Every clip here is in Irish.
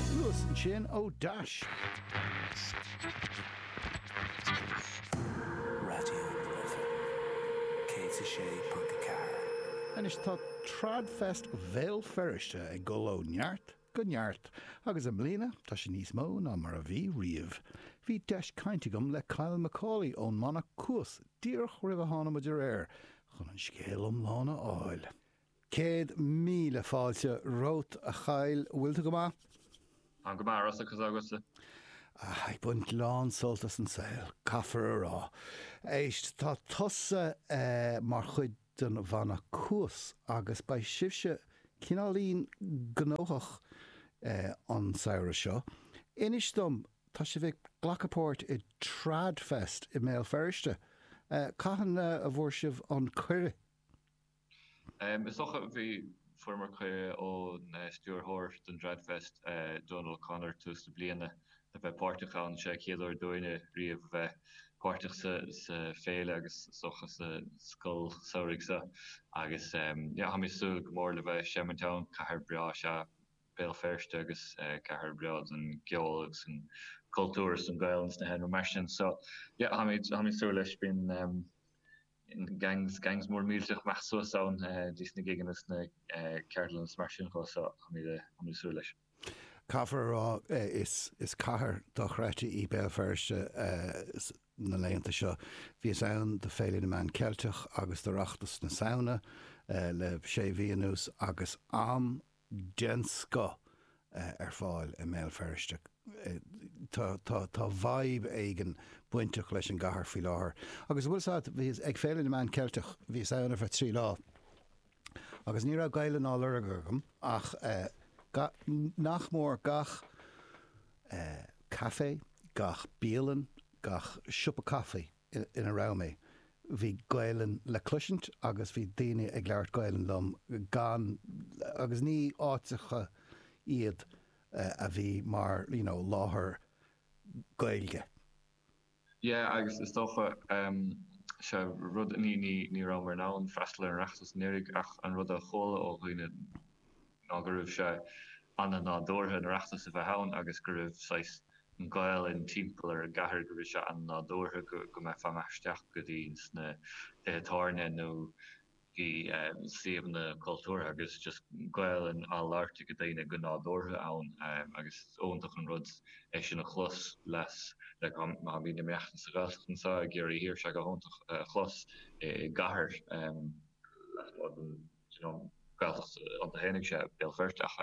Thuas ansin ó dheas. Raidió na Life 106.4. Anois tá TradFest Bhéal Feirste ag dul ó neart go neart agus i mbliana tá sé níos mó ná mar a bhí riamh. Bhí deis cainte agam le Kyle Macaulay ón mbanna Cuas díreach roimh a tháinig muid ar aer chun an scéal iomlán a fháil. Céad míle fáilte romhat, a Kyle. Bhfuil tú go maith? Táim go maith, Rossa, conas tá agatsa? Ah, ag baint lán sult as an saol, caithfear a rá. Éist, tá tusa mar chuid den bhanna Cuas agus beidh sibhse cineáilín gnóthach an samhradh seo. Inis dom, tá sibh ag glacadh páirt i TradFest i mBéal Feirste. Cathain a bhfuair sibh an cuireadh? Is dócha, bhí, fuaireamar cuireadh ón stiúrthóir don dTradfest, Donal O'Connor, tús na bliana le bheith páirteach ann. Is é an chéad uair dúinne riamh a bheith páirteach sa Féile agus is dócha sa Scoil Samhraidh seo agus tá mé ag súil go mór le bheith ag seimint ann. Cathair bhreá is ea Béal Feirste agus cathair bhreá don gceol agus an cultúr is an Ghaelainn is na hEalaíona mar sin. So, yeah, táimid ag súil leis. Bíonn. Gangs, gangs mór millteach ag imeacht suas ann dtí sna gigeanna is na ceardlanna is mar sin dhó so táimid ag súil leis. Caithfear a rá is cathair dochreidte í Béal Feirste na laethanta seo. Bhíos ann do Féile na Meán Ceilteach agus d'Oireachtas na Samhna le sé mhí anuas agus am den scoth ar fáil i mBéal Feirste. Tá vibe éigin bainteach leis an gcathair faoi láthair. Agus an bhfuil a fhios agat, bhíos ag Féile na Meán Ceilteach, bhíos ann ar feadh trí lá, agus ní raibh Gaelainn á lorg agam ach nach mór gach café, gach bialann, gach siopa caifí. ina raibh mé, bhí Gaelainn le cloisint agus bhí daoine ag labhairt Gaelainn liom gan, agus ní áiteacha iad a bhí mar you know láthair Gaeilge. Yeah agus is dócha em sé an rud ní, ní, ní rabhamar in ann freastal ar an Oireachtas anuraidh ach an rud a chuala ó dhaoine, ná go raibh sé ana-nádúrtha an Oireachtas a bheith ann agus go raibh saghas an Ghaolainn timpeall ar an gcathair, go raibh sé ana-nádúrtha go mbeifeá ag imeacht isteach go dtí sna tithe tábhairne nó i suíomhanna cultúrtha agus just Gaolainn á labhairt ag daoine go nádúrtha ann agus is iontach an rud é sin a chlos like má bhí na meáin sa Ghaeltacht anseo i gCiarraí Thiar, bhí sé go hiontach a chlos i gcathair lasmuigh den. you know Gaeltacht iontu féin agus sé Béal Feirste ach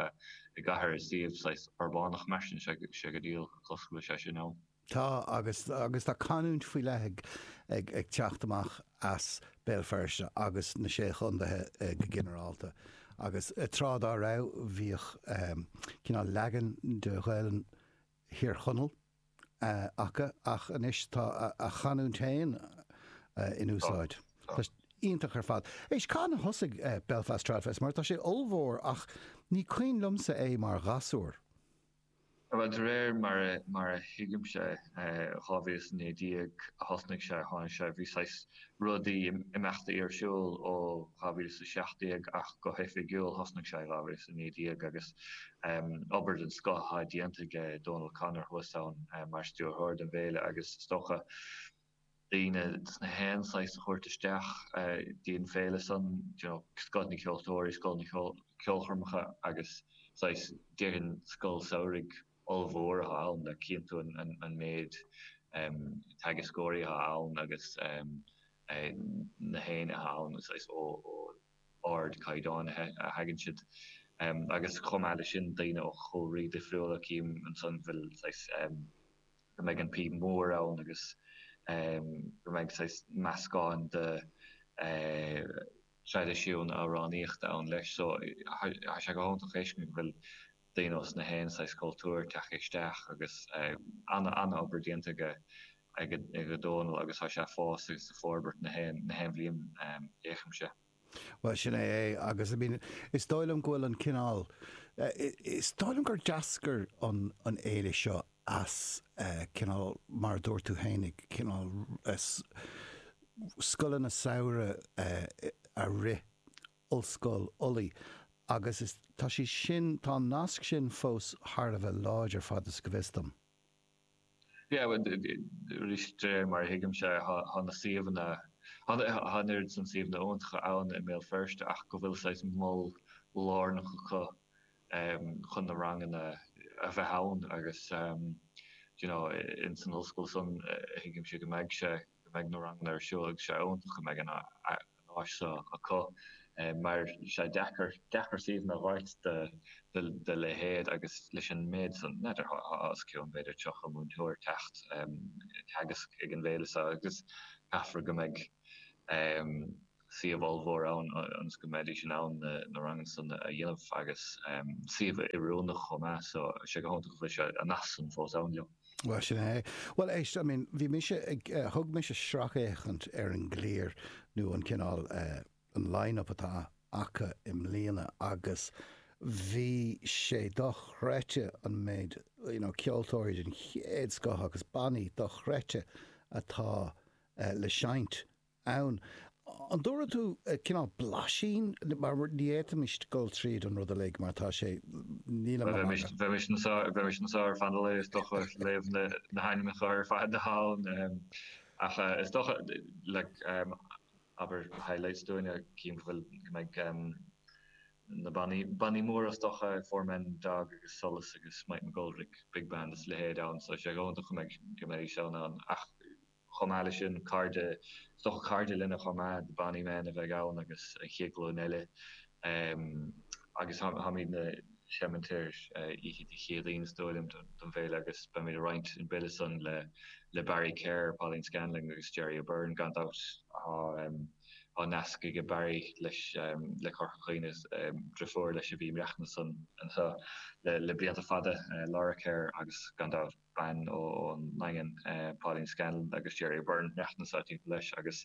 i gcathair i suíomh saghas uirbeach mar sin sé sé go diail cosúil go bhfuil sé sin ann. Tá agus agus tá canúint faoi leith ag ag ag teacht amach as Béal Feirste agus na Sé Chontaetha go ginearálta agus tráth dá raibh, bhíodh cineál leagan de Ghaelainn Thír Chonaill, acu ach anois tá a gcanúint féin in úsáid. Tá sé iontach ar fad. Éist, cathain a thosaigh Belfast Tradfest mar tá sé ollmhór ach ní cuimhin liomsa é mar ghasúr. Bhuel, de réir mar a thuigimse, 2019 a thosnaigh sé, tháinig sé, bhí saghas rudaí, imeachtaí ar siúl ó 2017 ach go hoifigiúil thosnaigh sé i 2019 agus obair den scoth atá déanta aige, Dónal O'Connor thuas ann mar stiúrthóir don bhféile agus is dócha daoine ós na haon saghas a thabhairt isteach dtí an féile san, scoth na ceoltóirí, scoth na ceolchoirmeacha agus saghas, déarfainn, scoil samhraidh. ollmhór atá ann, le cinntiú an méid teagascóirí atá ann agus na héinne atá ann, is ó ardchaighdeán a thagann siad. Agus chomh maith le sin, daoine ó chúlraí difriúla, cím ansan bhfuil saghas, go mbeidh an píob mór ann agus go mbeidh saghas meascán de traidisiún amhránaíochta ann leis. So, tá sé go hiontach a fheiscint go bhfuil daoine ós na haon saghas cultúir tagtha isteach agus an-obair déanta aige Dónall agus tá sé fós ag forbairt na haon bhliain fé mar a chímse. Bhuel, sin é é agus I mean is dóigh liom go bhfuil an cineál, is dóigh liom gur d'eascair an fhéile seo as cineál mar a dúirt tú féin cineál scoileanna samhraidh a rith, Ollscoil Ulaidh agus tá sé sin, tá an nasc sin fós thar a bheith láidir, fad is go bhfios dom. Yeah, well, arís, de réir mar a thuigimse, tá na suíomhanna, tá an oiread san suíomhanna iontacha ann i mBéal Feirste ach go bhfuil saghas mol lárnach acu chun na ranganna a bheith ann agus, you know, in san ollscoil san, thuigimse go mbeidh sé. go mbeidh na ranganna ar siúl agus sé iontach go mbeidh an áis seo acu mar sé deacair, deacair suíomhanna a thabhairt do leithéad agus leis an méid san, n'fheadar thá os cionn b'fhéidir 30 múinteoir ag teacht ag teagasc ag an bhféile seo agus caithfear go mbeidh. suíomh ollmhór ann ionas go mbeidís in ann na ranganna san a dhéanamh agus suíomh oiriúnach chomh maith so sé go hiontach go bhfuil sé, an nasc san fós ann leo. Bhuel, sin é. Bhuel, éist, I mean, bhí mise ag, thug mise sracfhéachaint ar an gclár nó an cineál eh, an line-up atá acu i mbliana agus bhí sé dochreidte an méid, you know, ceoltóirí den chéad scoth agus bannaí dochreidte atá le seinnt. ann. An dtabharfaidh tú cineál blaisín mar ní fhéadfaimis dul tríd an rud uilig mar tá sé. níl an rud. Bheimis anseo ar feadh an lae is dócha ag léamh na hainmneacha ar fad atá ann ach is dócha, like, abair highlights dúinne, cinn go bhfuil like na bannaí, bannaí móra is dócha, Four Men Dog agus Solas agus Mike McGoldrick Big Band is a leithéid ann so is é go eoghan dom go mbeidh, go mbeidh sé ann ach. Chomh maith le sin, cairde, is dócha cairde linne chomh maith, Bonny Men a bheidh ann agus an chéad ghlúin eile. Agus táimidne ag seimint ar oíche Dé Céadaoin is dóigh liom den bhféile agus beimid ag roinnt an bill san le Barry Kerr, Pauline Scanlon agus Gerry O'Beirne gan dabht. Tá nasc aige Barry leis le Corca Dhuibhne, driofúr leis a bhí ag maireachtaint anseo le blianta fada, Laura Kerr agus gan dabht. bean ón nDaingean, Pauline Scanlon, agus Gerry O'Beirne, ag maireachtaint anseo timpeall leis, agus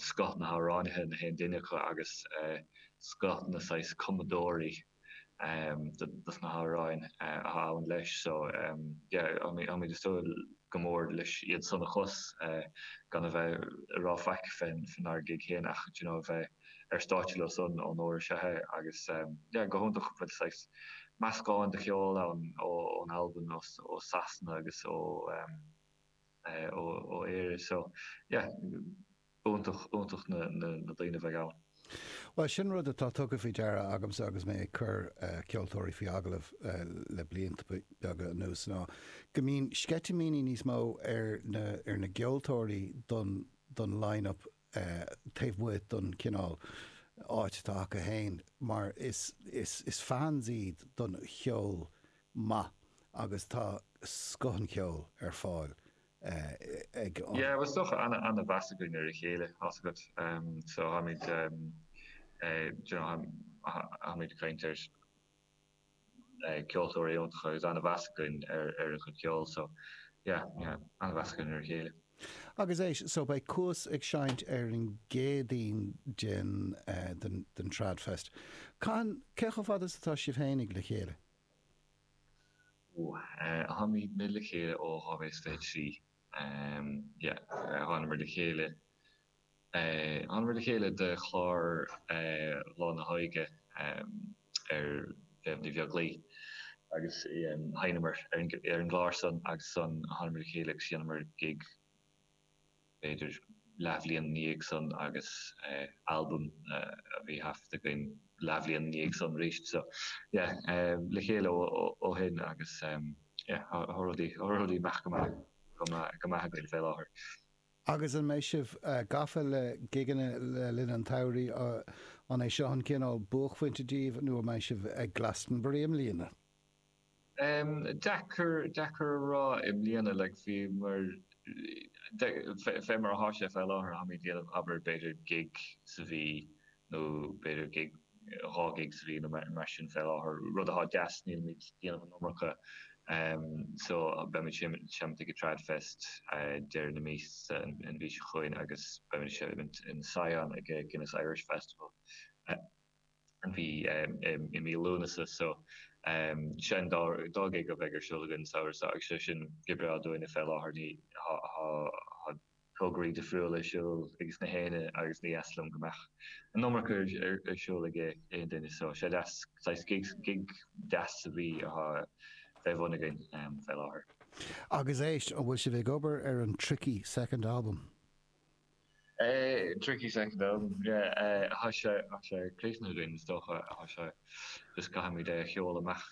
scoth na hamhránaithe, na haon duine acu, agus scoth na saghas cumadóirí dos na hamhráin atá ann leis. So, yeah, táimid ag súil go mór leis iad san a chlos, gan a bheith ag rá faic fén ár ngig féin ach, do you know, a bheith. ar stáitse leo san onóir is ea é agus yeah go hiontach go bhfuil saghas meascán de cheol ann ó ón Albain ós ó Sasana agus ó eh ó ó Éire so yeah iontach iontach na na na daoine a bheidh ann. Bhuel sin rud atá tugtha faoi deara agamsa agus mé ag cur eh ceoltóirí faoi agallamh eh le blianta beaga anuas ná go mbíonn sceitimíní níos mó ar na ar na gceoltóirí don don line up taobh amuigh den chineál áit atá acu féin mar is fans iad don cheol maith agus tá scoth an cheoil ar fáil ag an. Is dócha, ana mheas againn ar a chéile, tá's agat, so táimid, you know, táimid ag caint ar. ceoltóirí iontacha agus ana-mheas againn ar a gcuid ceoil so yeah yeah ana-mheas againn ar a chéile. Agus éist so beidh Cuas ag seinnt ar an gCéadaoin den den den Trad Fest. Cathain, cé chomh fada is atá sibh fhéinig le chéile? Ohh eh táimid le chéile ó 2023 em yeah thánamar le chéile thánamar le chéile do chlár Slán Abhaile ar Mhéabh Ní Bheaglaoich. agus sheinneamar ar an gclár san agus ansan thánamar le chéile agus dheineamar gig b'fhéidir leathbhliain ina dhiaidh san agus albam a bhí thaifeadta againn leathbhliain ina dhiaidh san aríst so yeah le chéile ó shin agus yeah tá rudaí ag imeacht go maith go maith againn fé láthair. Agus an mbeidh sibh gafa le gigeanna le linn an tsamhraidh? An é seo an cineál buaicphointe daoibh nó an mbeidh sibh ag Glastonbury i mbliana? Deacair, deacair a rá. I mbliana like bhí mar, fé mar atá sé fé láthair, táimid ag déanamh abair b'fhéidir gig sa mhí, nó b'fhéidir gig, dhá gig sa bhliain nó mar sin fé láthair, rud atá deas, nílimid ag déanamh an iomarca so beimid ag seinnt ag an Tradfest deireadh na míosa an mhí seo chugainn agus beimid ag seinnt in Sion ag Guinness Irish Festival an mhí i mí Lúnasa so seo an dá gig a bheidh ar siúl againn an samhradh seo agus sé sin oibre dúinne fé láthair ní tograí difriúla ar siúl ages na héinne agus ní deas liom go mbeadh an iomarca ar siúl ag aon duine so sé deas saghas gigs, gig deas a bheith atá fé bhun againn fé láthair. Agus éist, an bhfuil sibh ag obair ar an Tricky Second Album? Tricky Second Album, yeah, tá sé, tá sé críochnaithe againn is dócha tá sé just caithfimid é a scaoileadh amach.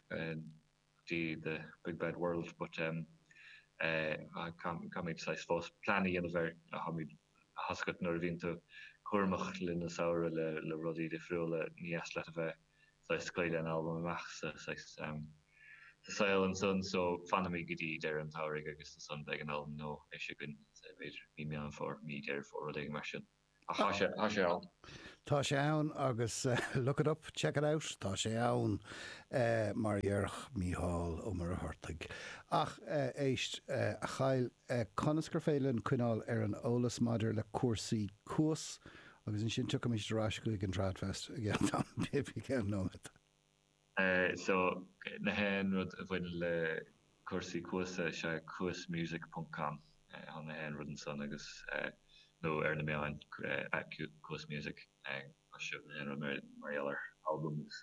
dtí the big bad world but em caithfimid saghas fós plean a dhéanamh air air toisc nuair a bhíonn tú cúramach le linn an tsamhraidh le le rudaí difriúla ní deas leat a bheith saghas ag scaoileadh an albam amach sa saghas em sa saol ansan so fanfaimid go dtí deireadh an tsamhraidh agus ansan beidh an albam amuigh againn b'fhéidir mí meán fómhair mí deireadh fómhair rud éigin mar sin. Tá sé ann. Tá sé ann agus look it up, check it out, tá sé ann, mar a déarfadh Mícheál Ó Muircheartaigh. Ach éist, a Kyle, conas gur féidir linn coinneáil ar an eolas maidir le cúrsaí Cuas agus ansin tiocfaimid ar ais chuig an Tradfest i gceann nóiméad? So, nach aon rud a bhaineann le cúrsaí Cuas, is é cuasmusic ponc com chun nach aon rud ansan agus, nó ar na meáin, at cuasmusic, tá nach aon rud mar gheall ar albam agus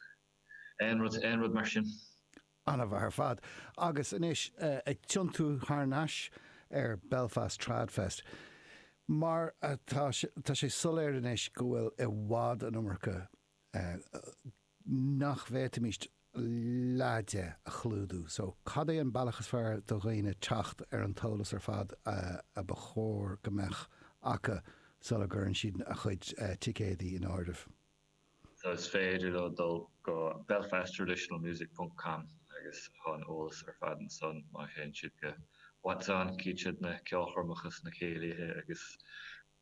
aon rud, aon rud mar sin. An-mhaith ar fad. Agus anois, ag tiontú thar n-ais ar Belfast Trad Fest, mar atá, tá sé soiléir anois go bhfuil i bhfad an iomarca, nach bhféadfaimis leath de a chlúdú. So, cad é an bealach is fearr do dhaoine teacht ar an t-eolas ar fad a ba chóir go mbeadh acu sula gcuireann siad a chuid ticéadaí in áirithe? So, is féidir leo dul go belfasttraditionalmusic.com agus tá an eolas ar fad ansan má théann siad go What's On, cíteann siad na ceolchoirmeacha is na céilithe agus.